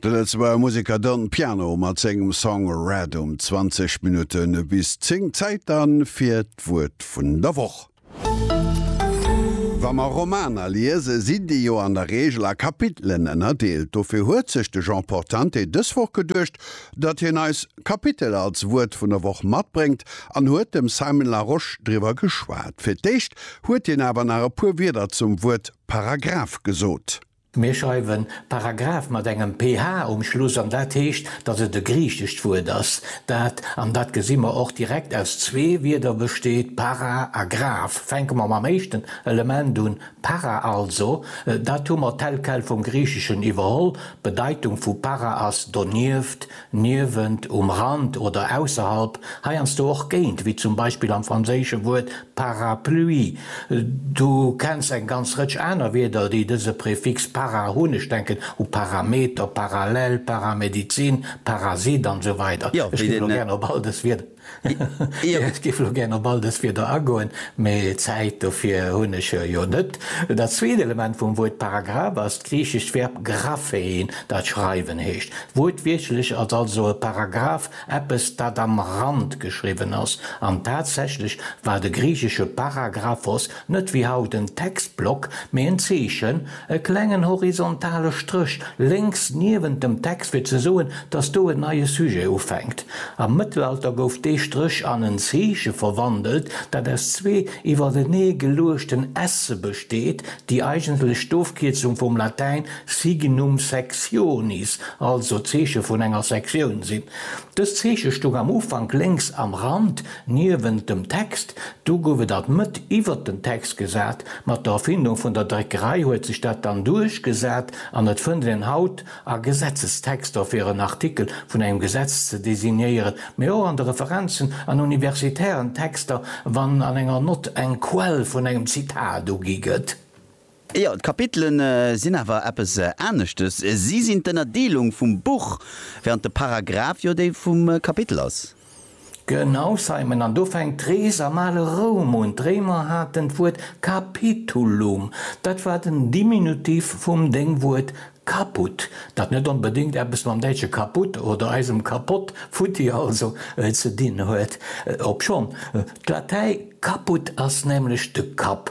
De Lëtzebuerger Museker Don Piano mat sengem Song Red um 20 Minutten bis 10. Zäit dann fir d'Wuert vun der Woch. Wa mer Romaner liese sinn déi jo an der Reegel a Kapitelen ënnerdeelt. Dofir huet sech de Jean Portante dës Woch geduecht, datt hien eis Kapitel als Wuert vun der Woch matbréngt an huet dem Simon Larosche driwwer geschwat. Fir d'éischt huet hien awer nach e puer Wierder zum Wuert. Paragraph gesot. Mir schreiwen Paragraph mat engem ph um Schluss an dat heescht, datt et e griichescht Wuert ass, dat, an dat gesi mer och direkt, aus zwee Wierder besteet, para a graph. Fänke mer mam éischten Element un, para also, dat hu mer tel quel vum Griicheschen iwwerholl, d'Bedeitung vu para ass donieft. Niewent, um Rand oder ausserhalb, heiansdo och géint, wéi zum Beispill am franséische Wuert parapluie. Du kenns eng ganz Rëtsch aner Wierder, déi dëse Prefix para hunn, ech denken u Parameter, Parallel, Paramedizin, Parasit an esou weider. Ech ginn elo gären op all dës Wierder. Ech géif elo gären op all dës Wierder agoen, mä Zäit dofir hunn ech jo net. Dat zweet Element vum Wuert Paragraph ass d'griichescht Verb graphein, dat schreiwen heescht. Wuertwiertlech ass also e Paragraph eppes, dat am Rand geschriwwen ass. An tatsächlech war de griichesche para grapho's net wéi haut en Textblock, mä en Zeechen, E klengen horizontale Stréch lénks niewent dem Text fir ze soen, dass do en neie Sujet ufänkt. Am Mëttelalter gouf dee Stréch an en Zeeche verwandelt, dat aus zwee iwwertenee geluechten esse besteet, déi eigentlech d'Ofkierzung vum Latäin signum sectionis, also d'Zeeche vun enger Sektioun, sinn. Dëst Zeeche stoung am Ufank lénks am Rand, Niewent dem Text, do gouf et alt Mëtt iwwert den Text gesat, mat der Erfindung vun der Dréckerei huet sech dat dann duerchgesat an et fënnt een haut a Gesetzestexter fir en Artikel vun engem Gesetz ze designéieren, mee och an de Referenzen an universitären Texter, wann an enger Nott eng Quell vun engem Zitat ugi gëtt. Jo, d'Kapitelen sinn awer eppes aneschtes, si sinn d'Ënnerdeelung vum Buch, während de Paragraph jo déi vum Kapitel ass. Genau, Simon, an do fänkt d'Rees am ale Roum un. D'Réimer haten d'Wuert capitulum, dat war den Diminutiv vum Déngwuert caput, dat net onbedéngt eppes mam däitsche kaputt oder eisem kapott, futti also, ze dinn huet, obschonn d'Latäi caput ass, nämlech de Kapp,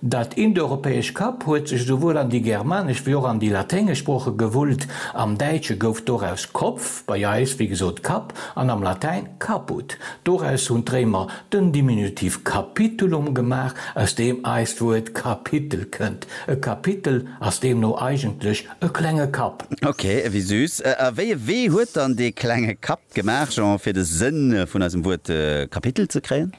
Dat indoeuropäesch Kap huet sech esouwuel an déi germanesch wéi och an déi laténgesch Sprooche gewullt. Am Däitsche gouf doraus Kopf, bei eis wéi gesot Kapp, an am Latäin caput. Doraus hunn d'Réimer den Diminutiv capitulum gemaach, aus deem eist Wuert Kapitel kënnt. E Kapitel ass deemno eigentlech e klenge Kapp. Ok, ewéi süß. A wéi e Wee huet dann dee klenge Kapp gemaach, Jean, fir de Sënn vun eisem Wuert Kapitel ze kréien?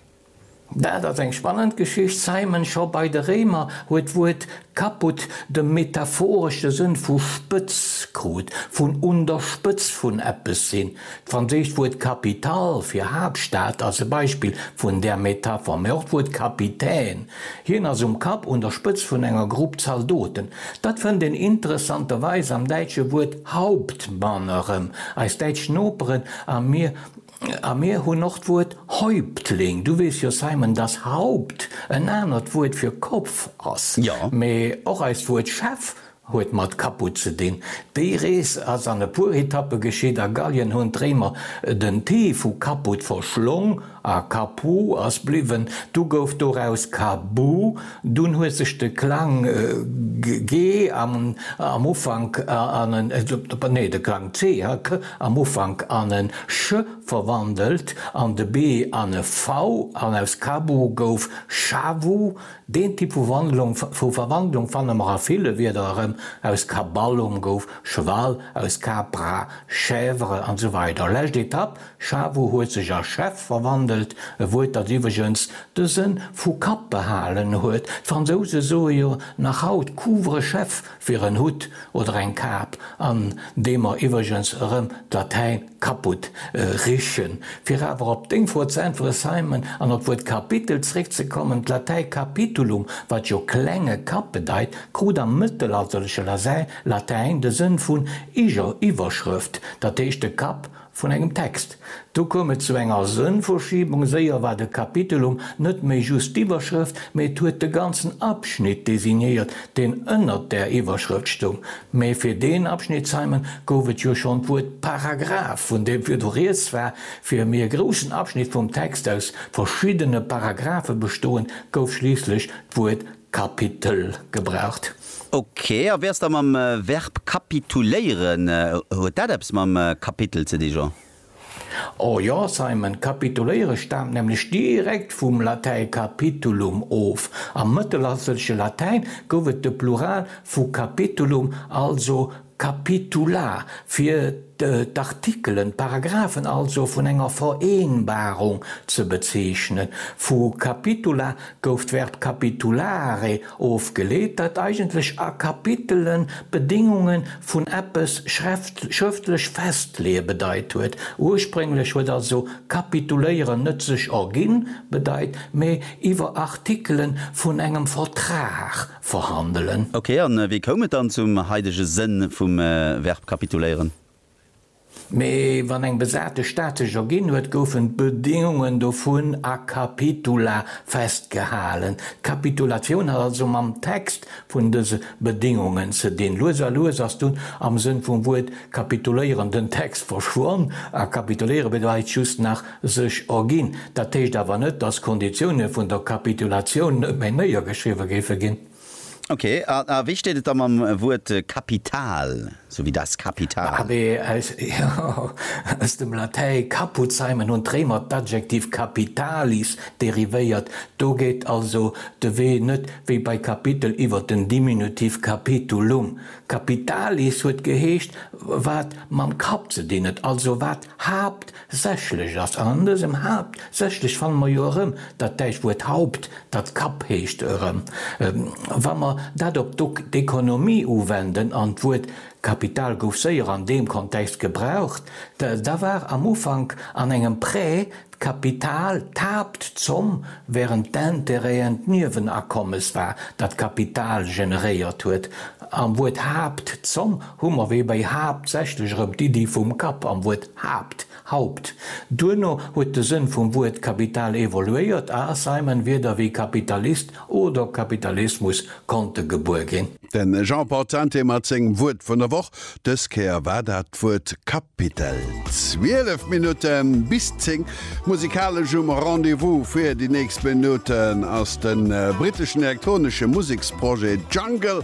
Dat ass eng spannend Geschicht. Simon, Scho bei de Réimer huet d'Wuert caput de metaphoresche Sënn vu Spëtz krut, vun un der Spëtz vun eppes sinn. D'franséischt Wuert capitale fir Haaptstad ass e Beispill vun där Metapher, mä och d'Wuert capitaine, hien ass um Kapp, un der Spëtz vun enger Grupp Zaldoten. Dat fënnt een interessanterweis am däitsche Wuert Hauptmann erëm. Eis däitsch Noperen a mir A mir hunn och d'Wuert Häuptling. Du weess jo, Simon, dass Haupt en anert Wuert fir Kopf ass. Jo. Mee och eist Wuert Chef huet mat Caput ze dinn. Déi Rees ass an e puer Etappe geschitt. A Gallien hunn d'Réimer den t vu Caput verschlong a Capu ass bliwwen. Du gouf doraus Cabu. Dunn huet sech de Klang G am Ufank an en, nee, de Klang C, ha, k, am Ufank an en ch verwandelt an de B an e v an aus Kabu gouf Shavu. Deen Typ vu Verwandlung fanne mer a ville Wierder erëm, aus Kaballum gouf Cheval, aus Capra Chèvre, an esou weider Lescht Etapp, Chavo huet sech a Chef verwandelt, e Wuert dat iwwregens de Sënn vu Kapp behalen huet, d'Fransouse soe jo nach haut Couvre-chef fir en Hutt oder eng Kap, an deem mer iwwregens erëm d'Latäin kaputt richen. Fir awer op deng Fro ze äntweren Simon, an op d'Wuert Kapitel zréckzekommen, d'Latäi capitulum, wat jo klenge Kapp bedeit, krut am mëttelalterleche Latäin de Sënn vun Iwwerschrëft, dat heescht de Kapp Vun engem Text. Do koum et zu enger Sënnverschiebung, séier war de Kapitelum net méi just d'Iwwerschrëft, mee et huet de ganzen Abschnitt designéiert, deen ënnert där Iwwerschrëft stoung. Mee fir deen Abschnitt, Simon, gouf et jo schonn d'Wuert Paragraph, vun deem virdu Rieds war, fir mee e groussen Abschnitt vum Text aus verschiddene Paragraphe bestoen, gouf schliisslech d'Wuert Kapitel gebraucht. Ok, a wéi ass da mam Verb kapituléieren? Huet dat eppes mam Kapitel ze di, Jean? O jo, Simon, kapituléiere staamt nämlech direkt vum Latäi capitulum of. Am mëttelalterleche Latäin gouf et de Plural vu capitulum, also Capitula fir d'Artikelen, d'Paragraphen also, vun enger Vereenbarung ze bezeechnen. Vu capitula gouf d'Verb capitulare ofgeleet, dat eigentlech a Kapitelen d'Bedéngunge vun eppes schrëftlech festleeë bedeit huet. Ursprénglech huet also kapituléieren net sech erginn bedeit, mee iwwer Artikele vun engem Vertrag verhandelen. Ok, an wéi koum et dann zum haidege Sënn vum Verb kapituléieren? Mee wann eng besate Stad sech erginn huet, goufen d'Bedingungen dovun a capitula festgehalen. D'Kapitulatioun hat also mam Text vun dëse Bedingungen ze dinn. Lues a lues ass dunn am Sënn vum Wuert kapituléieren den Text verschwonn a kapituléiere bedeit just nach Sech erginn. Dat heescht awer net, datt d'Konditioune vun der Kapitulatioun net méi néiergeschriwwe géife ginn. Ok, a wéi steet et da mam Wuert Kapital, sou wéi das Kapital? ABS, Jo, aus dem Latäi caput seimen hunn d'Réimer d'Adjektiv capitalis derivéiert. Do geet also de Wee net wéi bei Kapitel iwwer den Diminutiv capitulum. Capitalis huet geheescht, wat mam Kapp ze dinn huet, also wat Haapt, Sächlech ass, an an dësem Haapt, sächlech fanne mer jo erëm dat däitscht Wuert Haupt, dat Kapp heescht, erëm. Wa mer dat op d'Oekonomie uwenden, an d'Wuert Kapital gouf séier an deem Kontext gebraucht, da war am Ufank an engem Prêt d'Kapital d'Haaptzomm, während d'Intérêten d'Niewenakommes war, dat d'Kapital generéiert huet. Am Wuert Haaptzomm Hu mer wéi bei haaptsächlech erëm d'Iddi vum Kapp am Wuert Haapt, Haupt. Duerno huet de Sënn vum Wuert Kapital evoluéiert a Simon Wierder wéi Kapitalist oder Kapitalismus konnte gebuer ginn. De Jean Portante mat sengem Wuert vun der Woch. Dës Kéier war dat d'Wuert Kapitel. 12 Minutte bis 10, musikalesch um Rendez-vous fir déi nächst Minutten ass de britteschen elektronesche Museksprojet Jungle.